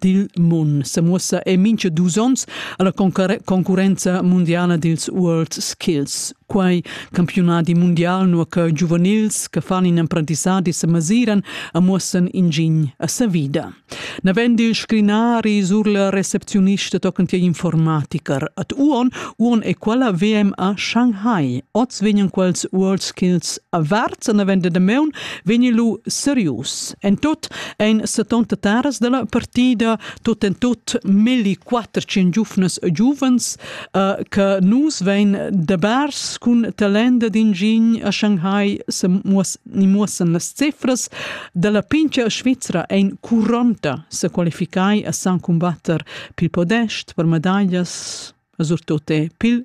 dil mun semuossa e mincha dus ons alla concurrenza mundiala dils World Skills. Quai campiunadi mundial nur che giuvenils che fan in apprendissadi se masiran a muossen ingin a sa vida. Navend il scrinari sur la receptionista tochen tia informatiker at uon uon e quella VMA Shanghai. Oz vegnan quels World Skills averts an avende de meun vegni lu serius. En tot ein 70 taras dalla partida tot en tot melli quatter cin giufnas e giuvens uh, che nus vein de bars cun talenda d'ingin a Shanghai se muos, ni muossen las cifras dalla pincha Svizra ein 40 se qualificai a san combatter pil podest per medaglias surtout pil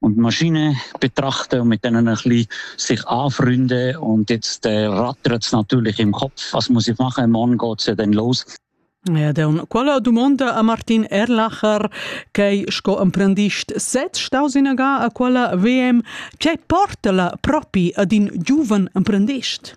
und Maschine betrachte und mit denen ein bisschen sich anfreunde und jetzt äh, rattert es natürlich im Kopf, was muss ich machen, morgen geht es ja dann los. Ja, dann quella dumonda a Martin Erlacher, che sco emprendist sez staus in a quella VM, che porta la propi ad in giuven emprendist?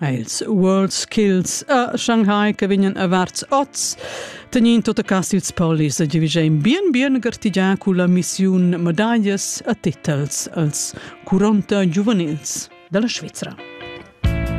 È ils World Skills a Shanghai che vegnan averts oz tegnind tutta cas ils polis e giavischein bien bien gartigià culla missiun medaglias e titels als 40 giuvenils dalla Svizra.